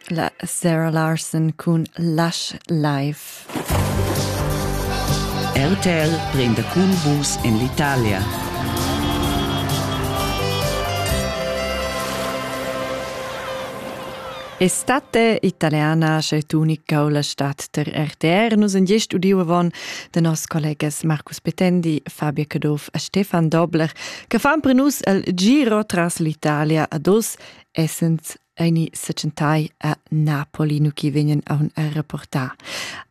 La Sarah Larson cun Lush Life. RTL prende cun vus in l'Italia. Estate italiana c'è unica o la stat ter RTR. Nus en gest udiu avon de nos collegas Marcus Petendi, Fabio Caduff e Stefan Dobler che fan per nus el giro tras l'Italia ad os, essens aini sechentai a Napoli, nu chi vegnen a un a reportar.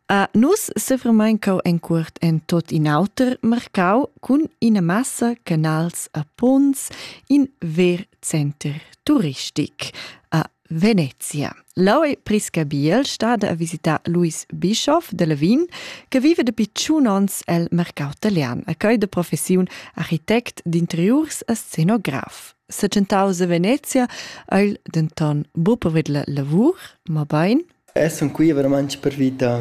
A nus sefremain cau en cuort en tot in auter mercau cun ina massa canals a Pons in ver center turistic. A Venezia. L'aui Priscabiel stada a visitar Luis Bischoff de Levin, che vive dapi tschun onns el mercau italian, a coi de professiun architect d'interiurs e scenograf. Secentaus a Venezia ha el denton buca povert lavur, ma bein Eg sun qui veramaing pervi da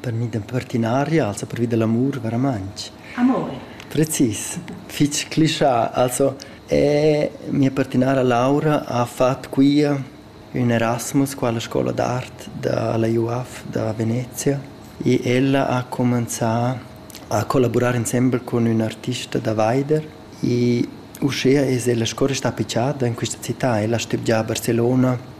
pervi da partinaria, also pervi da l'amur veramaing. Amore. Precis, fich clischà. Also e mia partinara Laura ha fat qui ün Erasmus qua alla scoula d'art da la UAF da Venezia e ella ha cumanzà a collaborar insembel cun ün artista da Weider e uschea es ella sco restà appicciada in quista città. Ella ha stübgià a Barcelona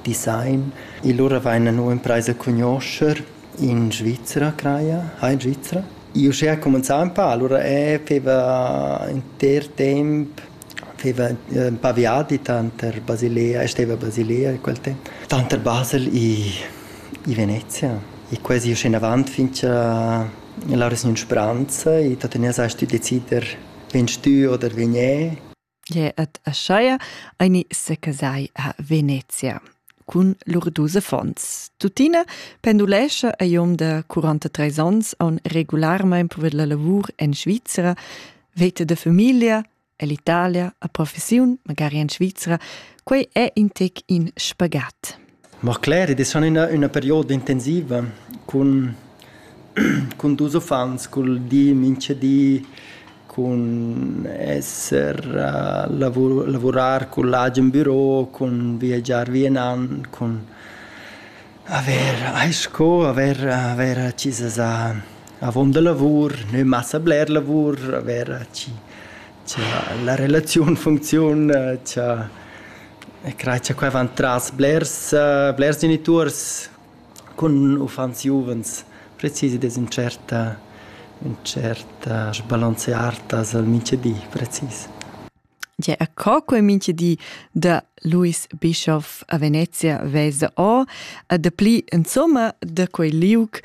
Design. E lura vaina nu impraisa a cugnuoscher in Svizra craja. Hai in Svizra? I uschea cumanzà ün pa, lura eh faiva inter temp faiva ün pa viadi tanter Basilea e steva a Basilea in quel temp. Tanter Basel e Venezia. E quasi usché inavant fincha l'Aura sgnün spranza e tuottüna sast tü decider vegn stü oder vegn e. Gle et Aschaia aini secasai a Venezia cun lur dus affons. Tuttina pendulescha ei um de 43 onns on regularmein per la lavur en Svizzera, vete de familia,ell'Italia, a professiun, magari en Svizzera, quei è in tec in spagat. Mo cler, id es schon üna üna perioda intensiva cun cun dus uffants, cul di minchadi, cun esser lavu- lavurar cun l'agen büro, cun viagiar vi e nan, cun avair ais sco avair avair accisas a avont da lavur, nö massa bler lavur, avair chi cha la relaziun funcziun cha crai cha quai van tras blers blers genituors cun uffants giuvens precis ed es ün tschert ün tschert sbalanzear tras il minchedi precis. Tge a co quel minchedi da Louis Bischof a Venezia vesa o a dapli insomma da quei liug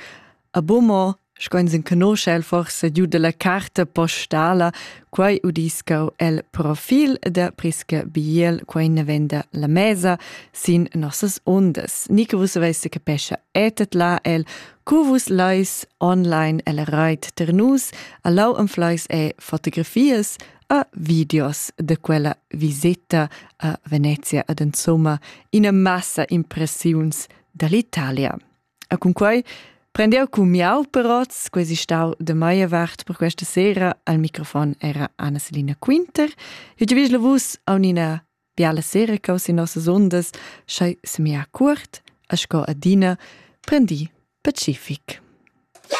A Bomo, sco ins enconosce el forse giù della carta postala, quai udiscau el profil da Prisca Biel, quai ne venda la mesa sin nossas ondas. Nico vus avesse capescha etet la el, cu vus lais online el rait ternus, allau am flais e fotografias a videos de quella visita a Venezia ad insomma ina massa impressiuns dall'Italia. E cun quei prendiu cun miau peroz, quasi stau de meia vart per questa sera, al microfon era Anna-Selina Quinter. E giu vis la vus a un'ina biala sera che sin nossas undas, schei semia curt, a sco adina, prendi pacific.